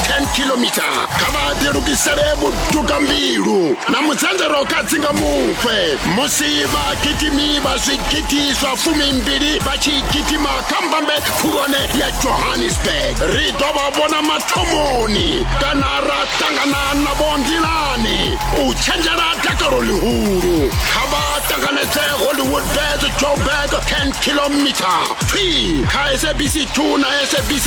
10 kilomita kha vha ḓilugisele vhuduka mbilu na mudzanzero kha dzinga mufhe musi vhagidimi vha zwigidi zwa fumimbili vha tshi gidima kha mbambe khulwane ya johannesburg ri ḓo vha vhona mathomoni kana ra ṱangana navho nḓilani u tshenzhela dakalo ḽihulu kha vha ṱanganedze hollywood bes joburg 10 kilomita free kha sabc 2 na sabc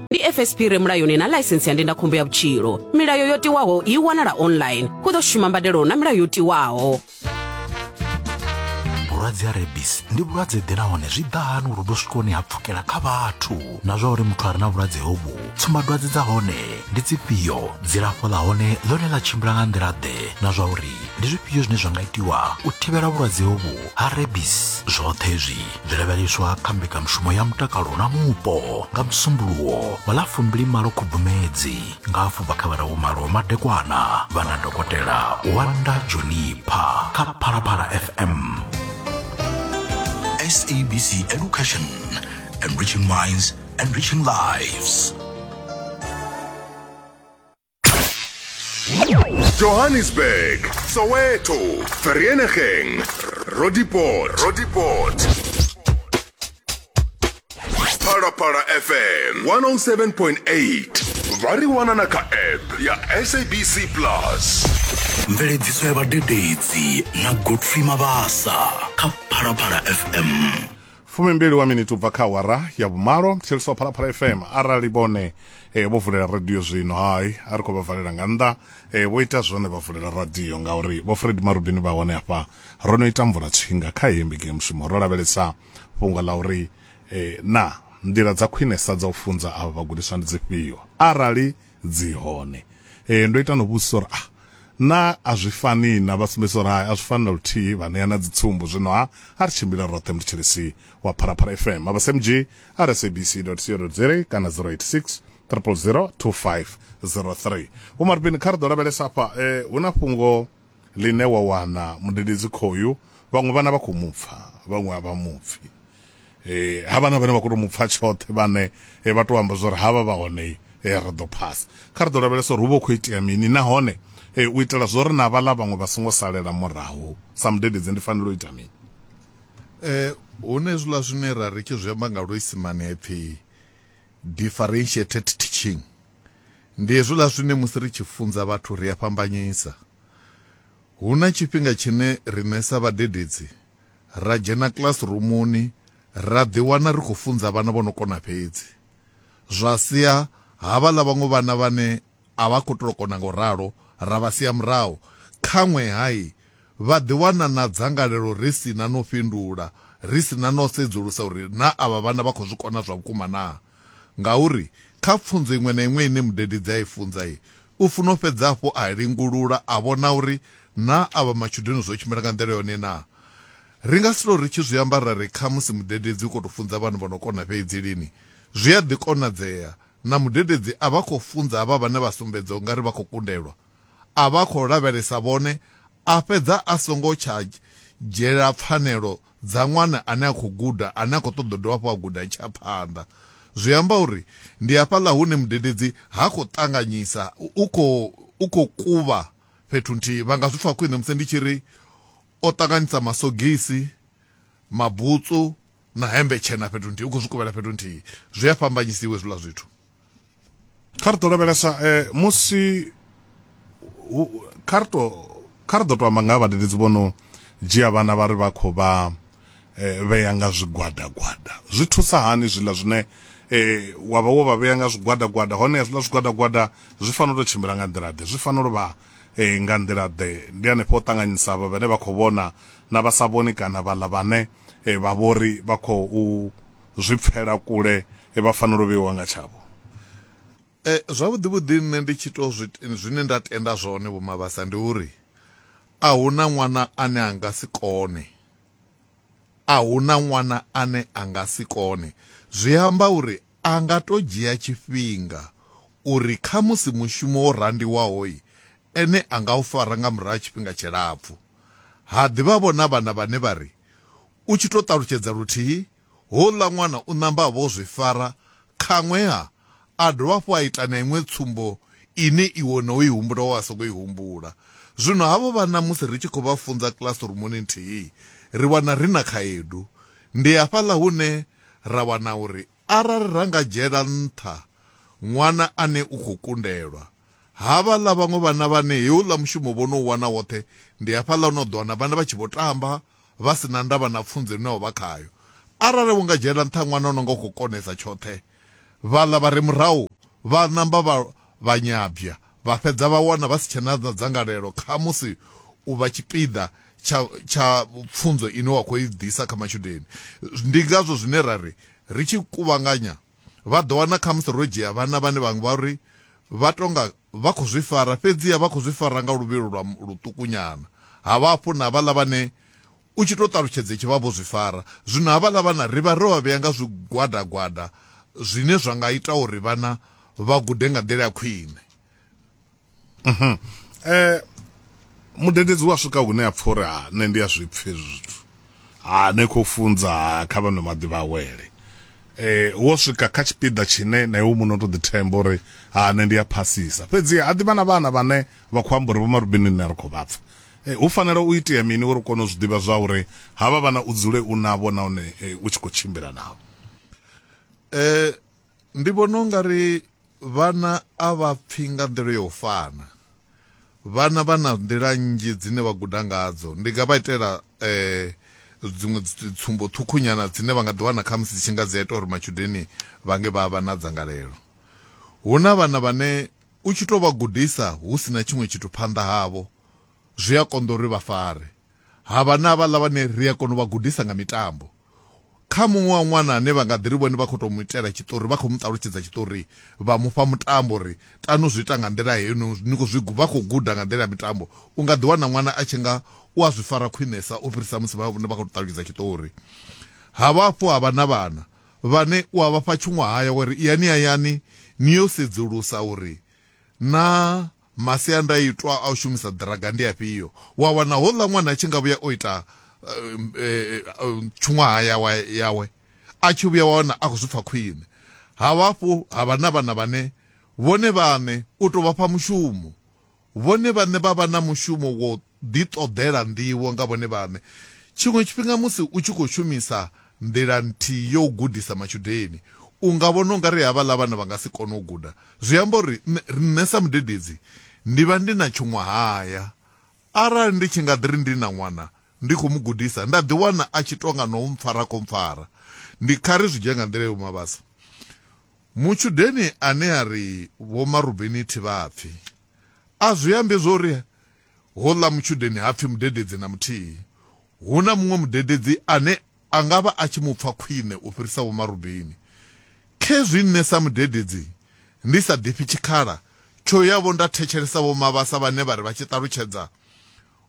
ndi fsp re mulayoni na ḽaisentsi ya ndindakhombo ya vhutshilo milayo yo tiwaho i wanala online hu ḓo shuma mbadelo na milayo yo tiwaho vhulwadze ha rebis ndi vhulwadze ḓe nahone zwi ḓa hani uri vhu swikoni ha pfukela kha vhathu na zwa uri muthu a re na vhulwadze hovhu tsumbadwadze dza hone ndi dzifhio dzilafho ḽa hone ḽone ḽa tshimbila nga nḓila ḓe na zwa uri ndi zwifhio zwine zwa nga itiwa u thivhela vhulwadze hovhu ha rebis zwoṱhe zwi zwi lavheleswa kha mbekanyamushumo ya mutakalo na mupo nga musumbuluwo wa ḽa fumbili malo khubvumedzi nga afho bva kha vhararu malo madekwana vha na dokotela wanda junipha kha phalaphala fm sabc education enriching minds enriching lives Johannesburg, Soweto, Vereeniging, Roodepoort, Roodepoort. Parapara FM 107.8. Vha ri wana na kha app ya SABC Plus. mveledziso ya vhadededzi na godfrey mabasa kha phalaphala fm fumimbili wa miniti ubva kha awara ya vhumalo thetshelesa phalaphala fm arali vhone e, vho vulela radio zwino hai a ri khou vha valela nga nnḓa e, vho ita zwone vha vulela radio ngauri vho fred marubini vha hone hafha ro no ita mvula tshinga kha heyi mbigi ya mushumo ro lavhelesa fhungo ḽa uri e, na nḓila dza khwinesa dza u funza avha vhagudiswa ndi dzifhio arali dzi hone eh ndo ita no vhudzisa uri ah na a zwi fani na vha sumbedzisa uri hai a zwi fani na luthihi vha ṋea na dzi tsumbo zwino ha a ri tshimbila roṱhe mutshilisi wa pharapara fm a vha smg rsabc co za kana 086 000 2503 vho marubini kha ri ḓo lavhelesa afha eh hu na fhungo ḽine wa wana mudededzi khoyu vhaṅwe vhana vha khou mu pfa vhaṅwe a vha mu pfi eh ha vhana vhane vha khou tou mu pfa tshoṱhe vhane eh, vha tou amba zwa uri havha vha hone eh, ri ḓo phasa kha ri ḓo lavhelesa uri hu vha hu khou itea mini nahone eh, u itela zwo ri na vhaḽa vhaṅwe vha songo salela murahu sa mudededzi ndi fanela u ita mini Eh, hune zwiḽa zwine ra ri tshi zwi amba nga luisimane ha ipfi differentiated teaching Ndi hezwiḽa zwine musi ri tshi funza vhathu ri a fhambanyisa. Hu na tshifhinga tshine riṋe sa vhadededzi ra dzhena kilasirumuni ra ḓiwana ri khou funza vhana vho no kona fhedzi, zwa sia havhaḽa vhaṅwe vhana vhane a vha khou tou kona nga u ralo ra vha sia murahu. Khaṅwe-ha vha ḓiwana na dzangalelo ri si na na u fhindula, ri si na na u sedzulusa uri naa avha vhana vha khou zwi kona zwa vhukuma naa. Ngauri kha pfunzo iṅwe na iṅwe ine mudededzi a i funza, u funa u fhedza hafhu a lingulula a vhona uri naa avha matshudeni zwo tshimbila nga nḓila yone naa. Ri nga si tou ri tshi zwi amba ra ri khamusi mudededzi u khou tou funza vhana vho no kona fhedzi lini. Zwi a ḓi konadzea na mudededzi a vha a khou funza havha vhane vha sumbedza u nga ri vha khou kundelwa, a vha a khou lavhelesa vhone a fhedza a songo tsha dzhiela pfanelo dza ṅwana ane a khou guda ane a khou ṱoḓa u dovha hafhu a guda i tshi ya phanḓa. Zwi amba uri ndi hafhaḽa hune mudededzi ha khou ṱanganyisa, u khou u khou kuvha fhethu nthihi. Vha nga zwi pfa khwine musi ndi tshi ri o ṱanganyisa masogisi, mabutsu na hemmbe tshena fhethu nthihi, u khou zwi kuvhela fhethu nthihi. Zwi a fhambanyisiwa hezwiḽa zwithu. kha ri ḓo lavhelesa um musi kha ri to kha ri ḓo to amba nga ha vhadededzi vho no dzhia vhana vha ri vha khou vha um vhea nga zwigwada gwada zwi thusa hani zwiḽa zwine um wa vha wo vha vhea nga zwigwada gwada hone hezwiḽa zwigwada gwada zwi fanela u to tshimbila nga nḓila ḓe zwi fanela u vha um nga nḓila ḓe ndi hanefho u ṱanganyisa vha vhane vha khou vhona na vha sa vhoni kana vhaḽa vhane vha vhori vha khou zwi pfela kule e vha fanela u vheiwa nga tshavho. E, zwavhuḓi vhuḓi nṋe ndi tshi to zwi zwine nda tenda zwone vho Mabasa ndi uri a huna ṅwana ane a nga si kone a huna ṅwana ane a nga si kone zwi amba uri a nga to dzhia tshifhinga uri kha musi mushumo wo randiwaho ene a nga u fara nga murahu tshifhinga tshilapfu ha ḓivha vhona vhana vhane vha ri U tshi tou ṱalutshedza luthihi, houḽa ṅwana u ṋamba a vha o zwi fara, khaṅwe-ha a dovha hafhu a ita na iṅwe tsumbo ine iwe no i humbula wa sokou i humbula. Zwino havho vhana musi ri tshi khou vha funza kilasirumuni nthihi, ri wana ri na khaedu. Ndi hafhaḽa hune ra wana uri Arali ra nga dzhiela nṱha ṅwana ane u khou kundelwa, havhaḽa vhaṅwe vhana vhane heuḽa mushumo vho no u wana woṱhe, ndi hafhaḽa hune u ḓo wana vhana vha tshi vho tamba vha si na ndavha na pfunzo ine vha vha khayo. Arali wo nga dzhiela nṱha ṅwana o no nga u khou konesa tshoṱhe, vhaḽa vha re murahu vha ṋamba vha vha nyabya, vha fhedza vha wana vha si tshe na dzangalelo kha musi u vha tshipiḓa tsha tsha pfunzo ine wa khou i ḓisa kha matshudeni. Ndi ngazwo zwine ra ri ri tshi kuvhanganya vha ḓo wana khamusi ro dzhia vhana vhane vhaṅwe vha ri vha tonga vha khou zwi fara fhedziha vha khou zwi fara nga luvhilo lwa luṱukunyana, ha vha hafhu na vhaḽa vhane U tshi tou ṱalutshedza itshi vha vho zwi fara. Zwino havhaḽa vhana ri vha ro vha vhea nga zwigwada-gwada zwine zwa nga ita uri vhana vha gude nga nḓila ya khwine. Mudededzi u a swika hune a pfa uri, Ha, nṋe ndi a zwi pfa hezwi zwithu. Ha, ni khou funza, ha, kha vha nwe maḓi vha awele. Wo swika kha tshipiḓa tshine na iwe muṋe u tou ḓithemba uri, Ha, nṋe ndi a phasisa. Fhedzi ha ḓi vha na vhana vhane vha khou amba uri, Vho Marubeni ni ne a ri khou vha pfa, Hu fanela u itea mini uri u kone u zwi ḓivha zwauri havha vhana u dzule u navho nahone u tshi khou tshimbila navho? Ndi vhona u nga ri vhana a vha pfhi nga nḓila ya u fana. Vhana vha na nḓila nnzhi dzine vha guda ngadzo. Ndi nga vha itela dziṅwe dzi tsumbo ṱhukhu nyana dzine vha nga ḓi wana khamusi dzi tshi nga dzi a ita uri matshudeni vha nge vha vha na dzangalelo. Hu na vhana vhane u tshi to vha gudisa hu sina tshiṅwe tshithu phanḓa havho zwi a konḓa uri vha fare. Ha vha na vhaḽa vhane ri a kona u vha gudisa nga mitambo. Kha muṅwe wa ṅwana ane vha nga ḓi ri vhone vha khou tou mu itela tshiṱori, vha khou mu ṱalutshedza tshiṱori, vha mu fha mutambo uri tanu zwi ita nga nḓila heyi, ni khou zwi vha khou guda nga nḓila ya mitambo, u nga ḓi wana ṅwana a tshi nga u a zwi fara khwinesa u fhirisa musi vha vhone vha khou tou ṱalutshedza tshiṱori. Ha vha hafhu ha vha na vhana vhane u a vha fha tshuṅwahaya wa ri, Iyani hayani ni yo sedzulusa uri naa Masiandaitwa a u shumisa ḓiraga ndi afhio? Wa wana houḽa ṅwana a tshi nga vhuya o ita tshuṅwaha yawe yawe a tshi vhuya wa wana a khou zwi pfa khwine. Ha vha hafhu ha vha na vhana vhane vhone vhaṋe u tou vha fha mushumo, vhone vhaṋe vha vha na mushumo wa u ḓiṱoḓela nḓivho nga vhone vhaṋe. Tshiṅwe tshifhinga musi u tshi khou shumisa nḓila nthihi ya u gudisa matshudeni, u nga vhona u nga ri havhaḽa vhana vha nga si kone u guda. Zwi amba uri nṋe sa mudededzi ndi vha ndi na tshuṅwahaya arali ndi tshi nga ḓi ri ndi na ṅwana ndi khou mu gudisa nda ḓiwana a tshi tou nga no mpfara khou mpfara. Ndi kha ri zwi dzhie nga nḓila ya u mavhasa mutshudeni ane a ri Vho Marubeni Thivhapfi a zwi ambi zwo ri Houḽa mutshudeni ha pfi mudededzi na muthihi. Hu na muṅwe mudededzi ane a nga vha a tshi mu pfa khwine u fhirisa Vho Marubeni. Khezwi nṋe sa mudededzi ndi sa ḓifhi tshikhala tsho ya-vho nda thetshelesa Vho Mabasa vhane vha ri vha tshi ṱalutshedza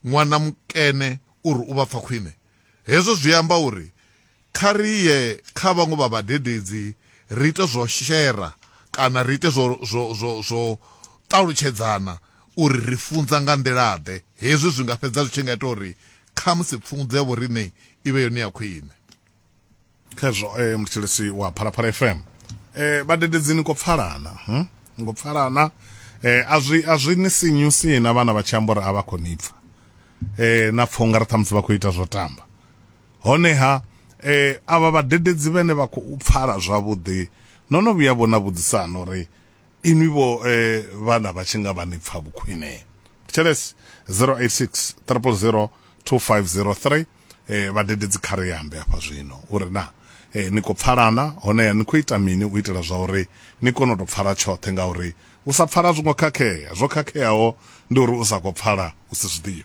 ṅwana mukene uri u vha pfa khwine, Hezwo zwi amba uri kha ri ye kha vhaṅwe vha vhadededzi ri ite zwo shera kana ri ite zwo, zwo, zwo, zwo ṱalutshedzana uri ri funza nga nḓila-ḓe. Hezwi zwi nga fhedza zwi tshi nga ita uri khamusi pfunzo ya vhoriṋe i vhe yone ya khwine. khezwo eh, muthetshelesi wa phalaphala fm eh, vhadededzi ni khou pfalana hm? ni khou pfalana eh, a zwi a zwi ni sinyusi na vhana vha tshi amba uri a vha khou ni pfa eh, na pfha unga ri ṱhamusi vha khou ita zwo tamba honeha eh, avha vhadededzi vhene vha khou pfala zwavhuḓi no no vhuya vhona vhudzisana uri inwi vho eh, vhana vha tshi nga vha ni pfa vhukhwine thetshelesi 086 000 2503 eh, vhadededzi kha ri ambe hafha zwino uri na eh, ni khou pfalana honeha ni khou ita mini u itela zwa uri ni kone u tou pfala tshoṱhe ngauri u sa pfala zwo ngo khakhea zwo khakheaho ndi uri u sa khou pfala u si zwi ḓivhe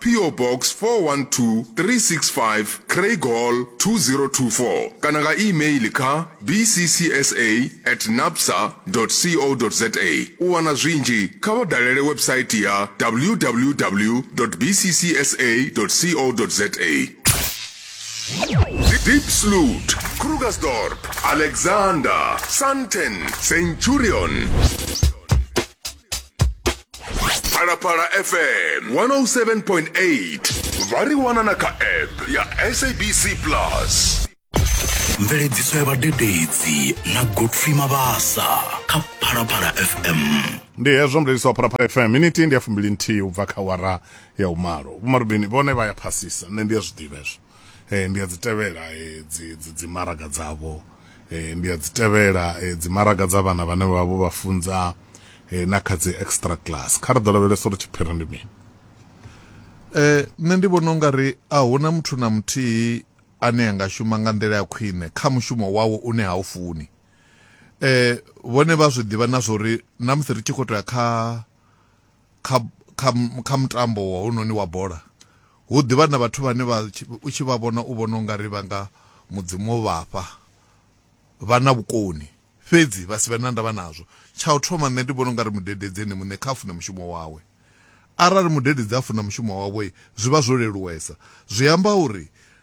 PO Box 412365 Craighall 2024 kana nga e-mail kha bccsa at napsa co za. U wana zwinzhi kha vha dalele website ya www bccsa co za. Diepsloot, Krugersdorp, Alexander, Sandton, Centurion. phalaphala fm 107.8 vha ri wana na kha app ya sabc plus mveledziso ya vhadededzi na godfrey mabasa kha phalaphala fm ndi hezwo mlelisi wa phalaphala fm miniti ndi ya fumbili nthihi u bva kha wara ya umalo vhomarubini vhone vha ya phasisa nṋe ndi ya zwiḓivha hezwo Eh, ndi a dzi tevhela eh, dzi maraga dzavho eh, ndi a dzi tevhela dzi maraga dza vhana vhane vha vho vha funza na kha dzi extra class kha ri ḓo lavhelesa uri tshiphiri ndi mini um nṋe ndi vhona ungari a huna muthu na muthihi ane a nga shuma nga nḓila ya khwine kha mushumo wawo une ha u funi um vhone vha zwi ḓivha na zwa uri na musi ri tshi khou tou ya kha Kha, kha, kha mutambo wa hounoni wa bola, hu ḓivha na vhathu vhane vha, u tshi vha vhona u vhona u nga ri vha nga Mudzimu o vha fha, vha na vhukoni, fhedzi vha si vhe na ndavha nazwo. Tsha u thoma, nṋe ndi vhona u nga ri mudededzi ene muṋe kha a fune mushumo wawe. Arali mudededzi a funa mushumo wawe, zwi vha zwo leluwesa. Zwi amba uri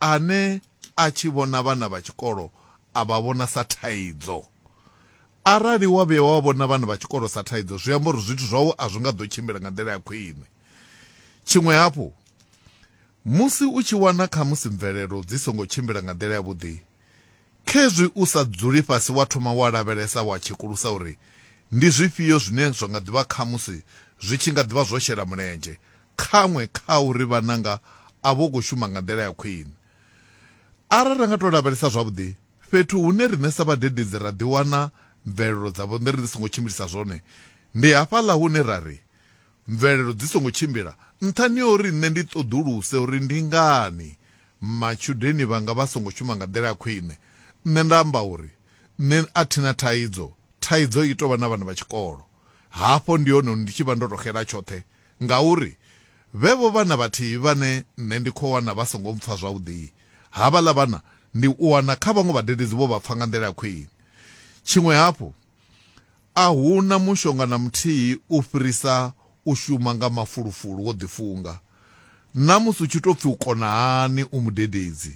Ane a tshi vhona vhana vha tshikolo a vha vhona sa thaidzo. Arali wa vhuya wa vhona vhana vha tshikolo sa thaidzo, zwi amba uri zwithu zwau a zwi nga ḓo tshimbila nga nḓila ya khwine. Tshiṅwe hafhu, musi u tshi wana khamusi mvelelo dzi songo tshimbila nga nḓila yavhuḓi, khezwi u sa dzuli fhasi wa thoma wa lavhelesa wa tshekulusa uri ndi zwifhio zwine zwa nga ḓi vha khamusi zwi tshi nga ḓi vha zwo shela mulenzhe khaṅwe kha uri vhananga a vho khou shuma nga nḓila ya khwine. Arali ra nga tou lavhelesa zwavhuḓi fhethu hune riṋe sa vhadededzi ra ḓiwana mvelelo dza vhonḓere dzi songo tshimbilisa zwone, ndi hafhaḽa hune ra ri, Mvelelo dzi songo tshimbila nṱhani ha uri nṋe ndi ṱoḓuluse uri ndi ngani matshudeni vhanga vha songo shuma nga nḓila ya khwine, nṋe nda amba uri, Nṋe a thi na thaidzo, thaidzo i tou vha na vhana vha tshikolo. Hafho ndi hone hune ndi tshi vha ndo tou xela tshoṱhe Ngauri vhevho vhana vhathihi vhane nṋe ndi khou wana vha songo mpfa zwavhuḓi, havhaḽa vhana ndi u wana kha vhaṅwe vhadededzi vho vha pfa nga nḓila ya khwine. Tshiṅwe hafhu, a hu na mushonga na muthihi u fhirisa u shuma nga mafulufulu wo ḓifunga, na musi hu tshi tou pfi u kona hani u mudededzi,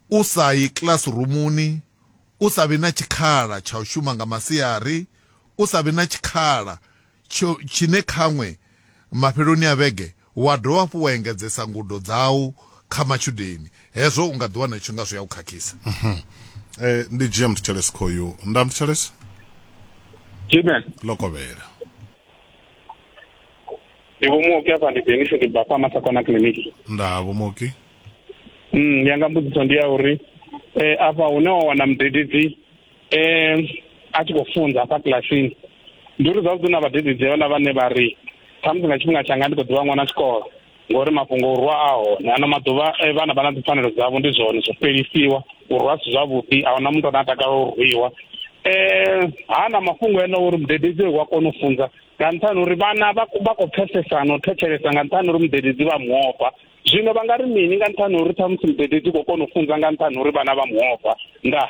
u sa yi kilasirumuni, u sa vhi na tshikhala tsha u shuma nga masiari, u sa vhi na tshikhala tsho tshine khaṅwe mafheloni a vhege wa dovha hafhu wa engedzesa ngudo dzau kha matshudeni, hezwo u nga ḓi wana u tshi nga zwi a u khakhisa. Eh, ndi dzhia mthetshelesi khoyu nda mthetshelesi Jimmy, lokovhela ndi vho muoki afha ndi Dennis ndi bva fha Masakona Clinic. nda vho moki Mm, yanga mbudziso ndi ya uri eh afha hune wa wana mudededzi um a tshi khou funza hafha kilasini ndi uri zwavhuḓi na vhadededzi vhala vhane vha ri khamusi nga tshifhinga tshanga ndi khou ḓivha ṅwana tshikolo ngori mafhungo o rwa a hone ano maḓuvha eh, vhana vha na dzipfanelo dzavho ndi zwone zwo fhelisiwa u rwa si zwavhuḓi a huna muthu ane a takala u rwiwa um ha na mafhungo ene uri mudededzi wa kona u funza nga nṱhani uri vhana vha khou pfesesana u thetshelesa nga nṱhani uri mudededzi vha muofha zwino vha nga ri mini nga nṱhani uri ṱhamusi mudededzi u khou kona u funza nga nṱhani uri vhana vha muofha ndaa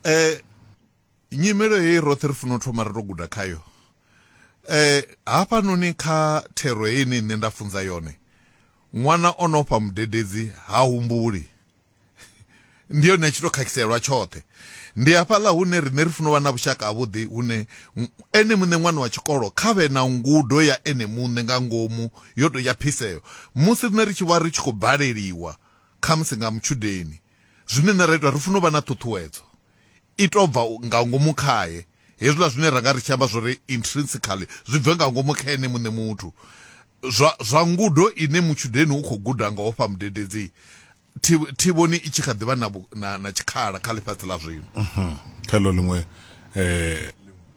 eh nyimelo heyi roṱhe ri funa u thoma ri to guda khayo eh hafhanoni kha thero heyi ni nṋe nda funza yone ṅwana o no fha mudededzi ha humbuli ndi yone tshi to khakhiselwa tshoṱhe ndi hafhaḽa hune rine ri funa u vha na vhushaka havhuḓi hune ene muṋe ṅwana wa tshikolo kha vhe na ngudo ya ene muṋe nga ngomu yo tou ya phiseo. Musi riṋe ri tshi vha ri tshi khou baleliwa, khamusi nga mutshudeni, zwine riṋe ra ita, ri funa u vha na ṱhuṱhuwedzo i tou bva nga ngomu khae. Hezwiḽa zwine ra nga ri tshi amba zwo ri intrinsically zwi bve nga ngomu kha ene muṋe muthu, zwa, zwa ngudo ine mutshudeni u khou guda nga u fha mudededzi thivhoni i tshi kha ḓivha na, na, na tshikhala kha ḽifhasi ḽa zwino mhm. kha ḽo ḽiṅwe eh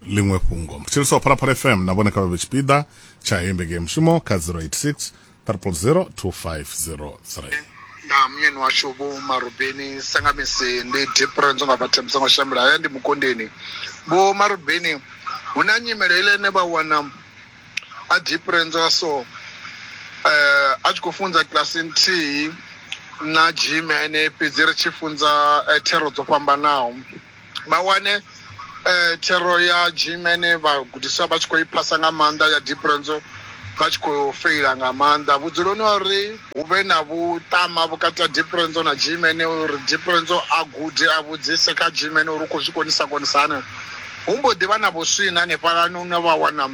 ḽiṅwe fhungo mthetshelesi wa phalaphala fm na vhone kha vha vhe tshipiḓa tsha heyi ndege ya mushumo kha 086 300 2503 na munyeni washu vho marubeni sangamisi ndi difference nga vhathu musango shambela haya ndi mukondeni vho marubeni hu na nyimele ile ine vha wana a difference wa so eh a tshi khou funza kiḽasi nthihi na jim ene fhedzi ri tshi funza eh, thero dzo fhambanaho vha wane eh, thero ya jim ene vhagudiswa vha tshi khou i phasa nga maanḓa ya diprenzo vha tshi khou feila nga maanḓa vhudzuloni wa uri hu vhe na vhuṱama vhukati ha diprenzo na jim ene uri diprenzo a gude a vhudzise kha jim ene uri u khou zwi konisa konisa haneo Hu mbo ḓi vha na vhuswina hanefhalani hune vha wana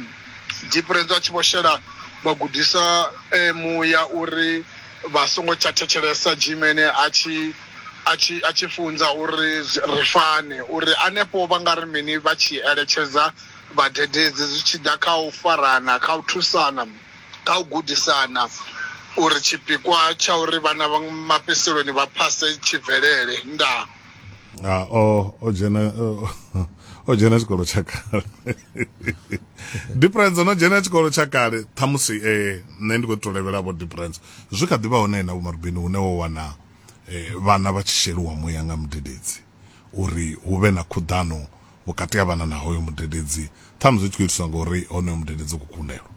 Dipirentsi a tshi vho shela vhagudiswa muya uri vha songo tsha thetshelesa Jimene a tshi a tshi a tshi funza uri ri fane uri hanefho vha nga ri mini vha tshi eletshedza vhadededzi zwi tshi ḓa kha u farana, kha u thusana, kha u gudisana uri tshipikwa tsha uri vhana mafhedziseloni vha phase tshi bvelele. Ndaa. ha ah, o o dzhena o dzhena tshikolo tsha kale difference no dzhena tshikolo tsha kale ṱhamusi eh nṋe ndi khou tou levhela vho difference zwi kha ḓi vha hone na vhomarubini hune wo wana eh, vhana vha tshi sheliwa muya nga mudededzi uri hu vhe na khuḓano vhukati ha vhana na hoyo mudededzi ṱhamusi zwi tshi khou itiswa ngauri honoyo mudededzi u khou kundelwa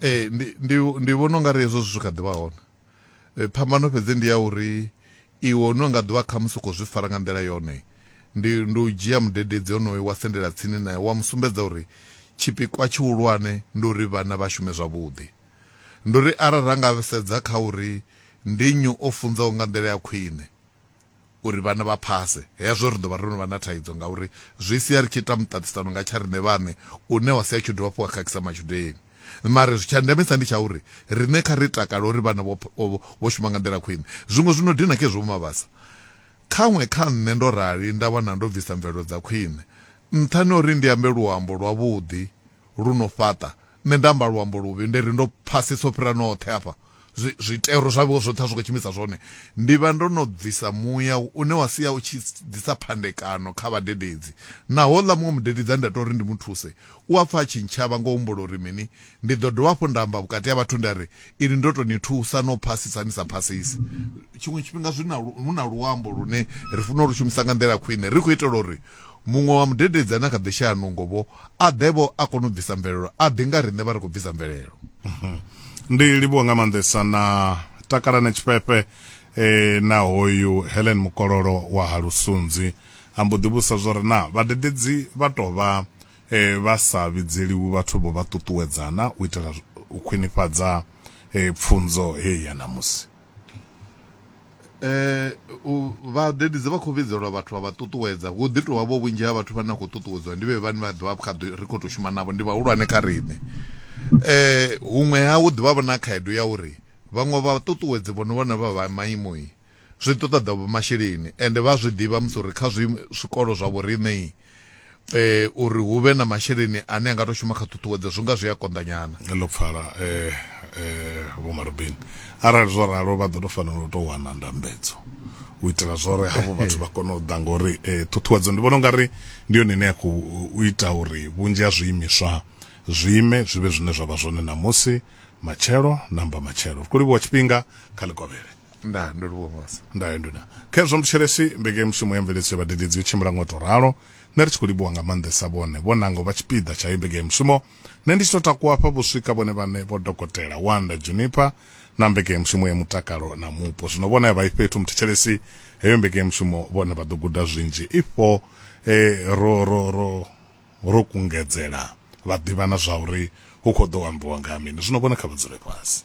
ee ndi vhona u nga ri hezwo zwithu kha ḓi vha hone eh, phambano fhedzi ndi ya uri Iwe une u nga ḓo vha khamusi u khou zwi fara nga nḓila yone, ndi, ndi u dzhia mudededzi onoyo wa sendela tsini nae wa mu sumbedza uri tshipikwa tshihulwane ndi uri vhana vha shume zwavhuḓi. Ndi uri arali ra nga sedza kha uri ndi nnyi o funzaho nga nḓila ya khwine uri vhana vha phase, hezwo ri ḓo vha ro no vha na thaidzo ngauri zwi sia ri tshi ita muṱaṱisano nga tsha riṋe vhaṋe une wa sia u tshi dovha hafhu wa khakhisa matshudeni. Mara zwi tsha ndemesa ndi tsha uri riṋe kha ri takale uri vhana vho vho shuma nga nḓila khwine. Zwiṅwe zwi no dina kha izwo Vho Mabasa. Khaṅwe kha nṋe ndo rali nda wana ndo bvisa mvelelo dza khwine. Nṱhani ha uri ndi ambe luambo lwavhuḓi lu no fhaṱa, nṋe nda amba luambo luvhi nda ri ndo phasisa u fhira noṱhe afha. zwi, zwitero zwavho zwoṱhe a zwi khou tshimbidza zwone, ndi vha ndo no bvisa muya une wa sia u tshi ḓisa phandekano kha vhadededzi. Naho houḽa muṅwe mudededzi a nda ita uri ndi mu thuse, u a pfa a tshi ntshavha nga u humbula uri mini? Ndi ḓo dovha hafhu nda amba vhukati ha vhathu nda ri, Inwi ndo tou ni thusa na u phasisa ni sa phasisi. Tshiṅwe tshifhinga zwi na, hu na luambo lune ri fanela u lu shumisa nga nḓila khwine ri khou itela uri Muṅwe wa mudededzi ane a kha ḓi shaya nungo-vho, a ḓe-vho a kone u bvisa mvelelo, a ḓi nga riṋe vha ri khou bvisa mvelelo. Ndi livhuwa nga maanḓesa na Takalani Tshifhefhe na hoyu Helen Mukololo wa ha Lusunzi. A mbo ḓi vhudzisa zwo ri, Naa vhadededzi vha tou vha vha sa vhidzeliwi vhathu-vho vha ṱuṱuwedza na u itela u khwinifhadza pfunzo heyi ya ṋamusi? u vhadededzi vha khou vhidzelwa vhathu vha vha ṱuṱuwedza hu ḓi tovha vho vhunzhi ha vhathu vhane na khou ṱuṱuwedzwa ndi vhe vhane vha ḓivha kha ri khou tou shuma navho ndi vhahulwane kha riṋe um huṅwe ha hu ḓivha vho na khaedu ya uri vhaṅwe vha ṱuṱuwedzi vhono vhona vha vha maimo zwi ṱoḓa vho masheleni ende vha zwi ḓivha musi uri kha zwi zwikolo zwa vhoriṋei eh uri hu vhe na masheleni ane a nga to shuma kha ṱhuṱhuwedzo zwi nga zwi a konḓanyana ḽo pfala eh eh vho marubini arali zwo ralo vha ḓo to fanela u to wana ndambedzo u itela zwore havho vhathu vha kone u ḓa ngori eh ṱhuṱhuwedzo ndi vhona ungari ndi yone ine ya khou u ita uri vhunzhi ha zwiimiswa zwiime zwi vhe zwine zwa vha zwone ṋamusi matshelo namba matshelo ri khou livhuwa tshifhinga kha ḽikovhele nda ndo livhuwa mose ndayo nduna khezwo muthetshelesi mbekemushumo ya mveledziso ya vhadededzi yo tshimbila ngo to ralo nṋe ri tshi khou livhuwa nga maanḓesa vhone vho nanga u vha tshipiḓa tsha heyi mbekemushumo nṋe ndi tshi tou takuwa hafha vho swika vhone vhaṋe vho dokotela wanda juniper na mbekemushumo ya mutakalo na mupo zwino vhone a vha i fhethu muthetshelesi heyo mbekemushumo vhone vha ḓo guda zwinzhi ifho eh, ro ro ro ro kungedzela vha ḓivha na zwa uri hu khou ḓo ambiwa nga ha mini zwino vhone kha vha dzule fhasi